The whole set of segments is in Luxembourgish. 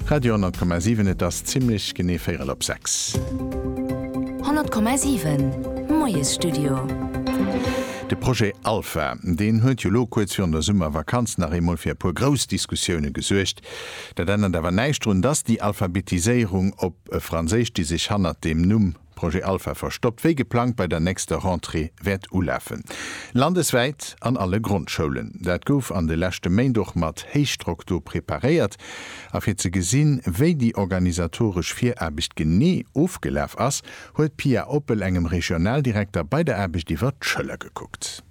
Radio 10,7 Et ass zimlech genee véierel op sechs. 10,7 Moiesstudio. De Projet Alpha, deen huet jo lo kuerz virun der Summervakanz nach eemol fir e puer grouss Diskussioune gesuergt. Dat ännert awer näischt drun, dass déi Alphabetiséierung op Franséisch, déi sech hannert deem Numm, Projet Alpha verstoppt wéi geplangt bei der nächster Rentrée wäert ulafen. Landeswäit an alle Grondschoulen. Dat gouf an de leschte Méint och mat Héichdrock do preparéiert. A fir ze gesinn, wéi déi organisatoresch Viraarbecht genee ofgelaf ass, huet d'Pia Oppel engem Regionaldirekter bei der Aarbecht iwwert d'Schëller gekuckt.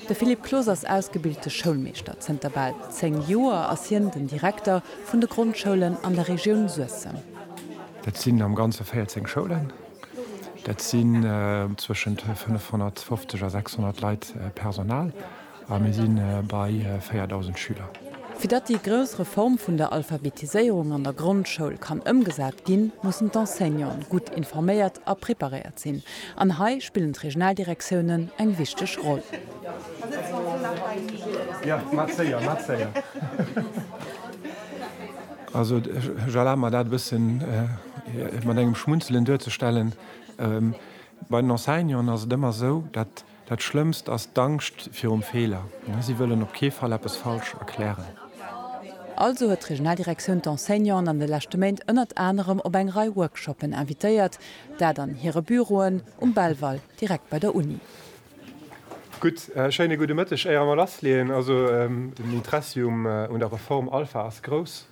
De Philippe Clos ass ausgebilte Schoulmeeschter. Zënter bal 10 Joer ass hien den Direkter vun de Grondschoulen an der Regioun Suessem. Dat sinn am Ganze 14 Schoulen. Dat sinn zwëschent 550 a 600 Leit Personal. A mir si bei 4.000 Schüler. Fir datt déi grouss Reform vun der Alphabetiséierung an der Grondschoul kann ëmgesat ginn, mussen d'Enseignanten gutt informéiert a preparéiert sinn. An hei spillen d'Regionaldirektiounen eng wichteg Roll. Also ech erlabe mer dat e bësse mat engem Schmunzelen duerzestellen. Bei den Enseignanten ass et ëmmer esou, datt. Dat Schlëmmst ass d'Angscht virum Feeler. Si wëllen op kee Fall eppes falsch erklären. Also huet d'Regionaldirektioun d'Enseignanten an de leschte Méint ënnert anerem op eng Rei Workshoppen invitéiert. Dat an hire Büroen um Belval, direkt bei der Uni. Gutt, schéine gudde Mëtteg, éier mer lassleeën. Also den Interessi un der Reform Alpha ass grouss.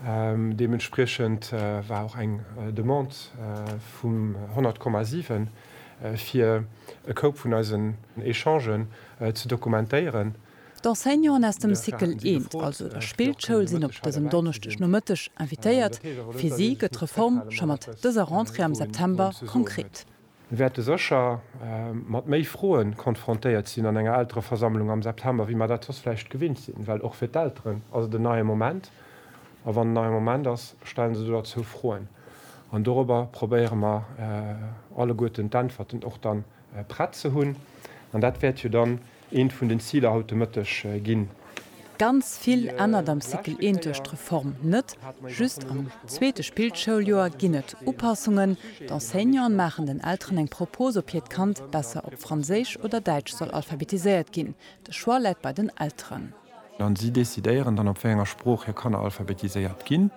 Deementspriechend war och eng Demande vum 100,7 fir e Koup vun eisen Echangen ze dokumentéieren. D'Enseignanten aus dem Cycle 1, also der Spillschoul, sinn op dësem Donneschdegnomëtteg invitéiert. Fir si gëtt d'Reform scho mat dëser Rentrée am September konkret. Mir wäerte sécher mat méi Froe konfrontéiert sinn an enger Eltereversammlung am September, wéi mer dat soss vläicht gewinnt sinn, well och fir d'Elteren ass et en neie Moment. A wann en neie Moment ass, stellen se doderzou Froen. An dorobber probéiere mer alleguerten d'Äntwerten och dann prett ze hunn. An dat wäert jo dann Eent vun den Ziler haut de Mëtteg ginn. Ganz vill ännert am Cycle I duerch d'Reform net. Just am zweete Spillschouljoer ginn et Upassungen. D'Enseignanten maachen den Elteren eng Propos, ob hiert Kand besser op Franséisch oder Däitsch soll alphabetiséiert ginn. De Choix läit bei den Elteren. An si decidéieren dann, op wéi enger Sprooch hir Kanner alphabetiséiert ginn.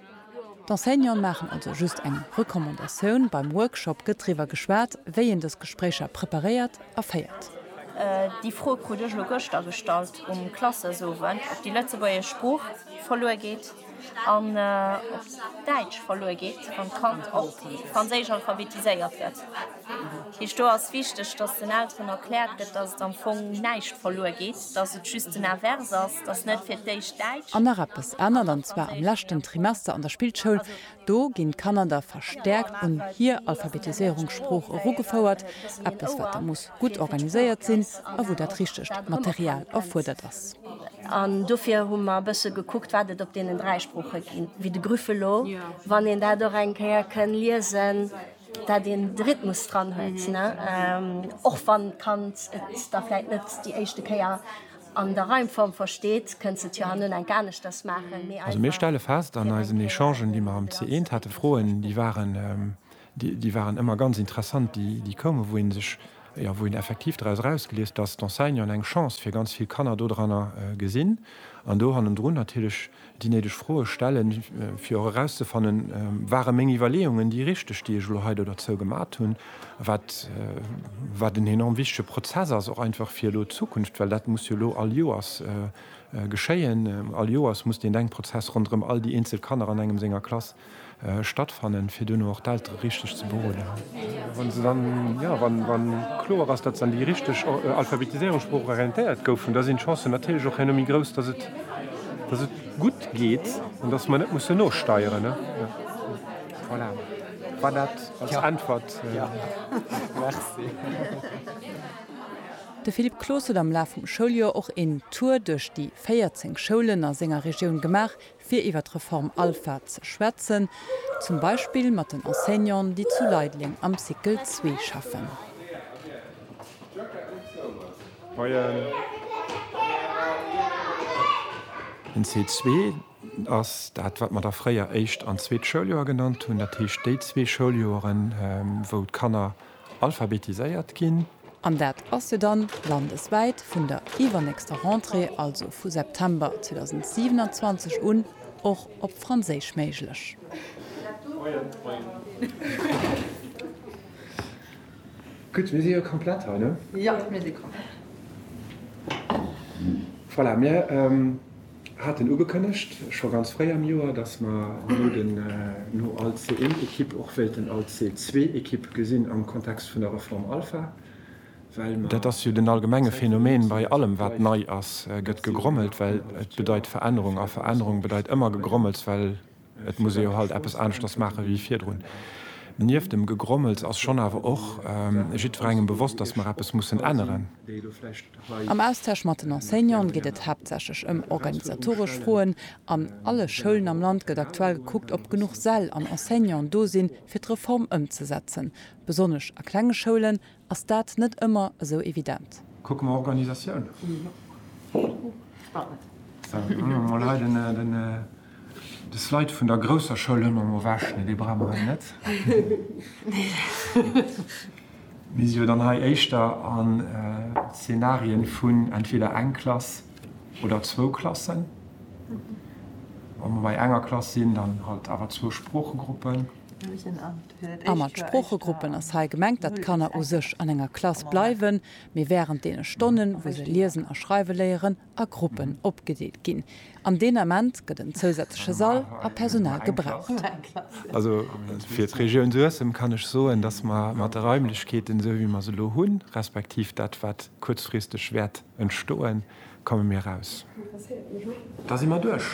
D'Enseignanten maachen also just eng Recommandatioun. Beim Workshop gëtt driwwer geschwat, wéi een dës Gespréicher preparéiert a féiert. Déi Fro krut ech elo gëschter gestallt um Klassesowend, ob déi lëtzebuergesch Sprooch verluer geet an ob d'Däitsch verluer geet, wann d'Kand op Franséisch alphabetiséiert gëtt. Heescht do ass wichteg, dass den Elteren erkläert gëtt, dass et am Fong näischt verluer geet, dass et just den Invers ass, dass net fir d'éischt Däitsch. An nach eppes ännert, an zwar am leschten Trimester an der Spillschoul. Do ginn d'Kanner da verstäerkt un hir Alphabetiséierung, Sprooch, erugefouert, eppes wat da muss gutt organiséiert sinn a wou dat richtegt Material erfuerdert ass. An dofir hu mer e bësse gekuckt, wat et op deenen dräi Sprooche ginn, wéi de Grüffelo, wann een dat och eng Kéier kënn liesen, dat een de Rhythmus dran huet, och wann d'Kand et da vläit net déi éischte Kéier an der Reimform versteet, kënnt se et jo hanno enk aneschters maachen, méi einfach. Also mir stelle fest an eisen Echangen, déi mer am C1 hate, Froen, déi waren, déi waren ëmmer ganz interessant, déi koumen, wou ee sech. Jo, wou een effektiv doraus erausgeliest, dass d'Enseignanten eng Chance fir ganz vill Kanner dodranner gesinn an do hannendrun natierlech déi néideg Froe stellen, fir och erauszefannen, Ware meng Iwwerleeungen déi richteg, déi ech elo hei do derzou gemat hunn? Wat, wat en enorm wichtege Prozess ass och einfach fir elo d'Zukunft, well dat muss jo elo all Joers geschéien. All Joers muss deen Denkprozess ronderëm all déi eenzel Kanner an engem senger Klass Stattfannen, fir duerno och d'Eltere richteg ze beroden. Wann se dann, jo, wann kloer ass, datt se an déi richteg Alphabetiséierung, Sprooch, orientéiert goufen, da sinn d'Chancen natierlech och herno méi grouss, datt et, datt et gutt geet an datt mer net mussen nosteieren. Voilà, war dat als Äntwert? Jo, merci. De Philippe Cloos huet am Laf vum Schouljoer och een Tour duerch déi 14 Schoulen a senger Regioun gemaach, fir iwwer d'Reform Alpha ze schwätzen, zum Beispill mat den Enseignanten, déi zu Leideleng am Cycle 2 schaffen. Den Cycle 2 ass dat, wat mer da fréier éischt an zweet Schouljoer genannt hunn, dat heescht déi zwee Schouljoren, wou d'Kanner, alphabetiséiert ginn. An dat ass jo dann landeswäit vun der iwwernächster Rentrée, also vu September 2027 un, och op Franséisch méiglech. Gutt, mir si jo komplett hei, ne? Jo, mir si komplett. Voilà, mir. haten ugekënnegt scho ganz fréi am Joer, dass mer no den no al C1-Ekipp och wéilten al C2-Ekipp gesinn am Kontext vun der Reform Alpha, well mer. Dat ass jo den allgemenge Phänomen bei allem wat nei ass, gëtt gegrommelt, well et bedeit Verännerung a Verännerung bedeit ëmmer Gegrommels, well Et muss ee jo halt eppes aneschters maache wéi virdrun. Nieft dem Gegrommels ass schonn awer och jiddwerengem bewosst, datt mer eppes mussen änneren. Am Austausch mat den Enseignante geet et haaptsächlech ëm organisatoresch Froen. An alle Schoulen am Land gëtt aktuell gekuckt, ob genuch Säll an Enseignanten do sinn, fir d'Reform ëmzesetzen. Besonnesch a klenge Schoulen ass dat net ëmmer esou evident. Kucke mer Organisatioun. Mer leiden de Slide vun der grousser Schoul hu mer mol ewech, mee dee brauche mer hei net. Mir si jo dann hei éischter a Szenarien vun entweder eng Klass oder zwou Klassen. Wa mer bei enger Klass sinn, dann halt awer zwou Sproochegruppen. A mat Sproochegruppen ass hei gemengt, datt d'Kanner u sech an enger Klass bleiwen, mee wärend deene Stonnen, wou se liesen a schreiwe léieren, a Gruppen opgedeelt ginn. An deen Ament gëtt en zousätzleche Sall a Personal gebraucht. Also fir d'Regioun Suessem kann ech soen, datt mer mat de Raimlechkeeten, esou wéi mer se elo hunn, respektiv dat, wat kuerzfristeg wäert entstoen, komme mir aus. Da si mer duerch.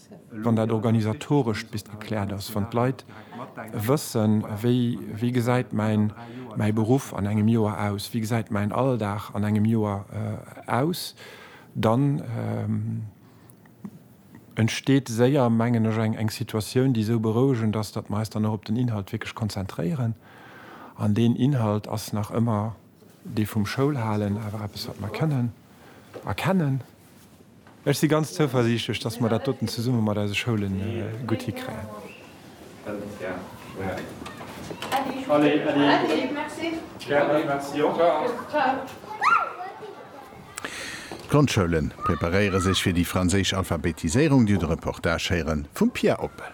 wann dat organisatorescht bis gekläert ass, wann d'Leit wëssen, wéi, wéi gesäit mäin, mäi Beruff an engem Joer aus, wéi gesäit mäin Alldag an engem Joer aus, dann entsteet séier, mengen ech, eng, eng Situatioun, déi esou berouegend ass, datt mer eis dann och op den Inhalt wierklech konzentréieren. An deen Inhalt ass nach ëmmer dee vum Schoulhalen, awer eppes, wat mer kënnen erkennen. Ech si ganz zouversiichtlech, datt mer dat doten zesumme mat eise Schoule gutt hikréien. D'Grondschoulen preparéiere sech fir déi franséisch Alphabetiséierung, dir de Reportage héiere vum Pia Oppel.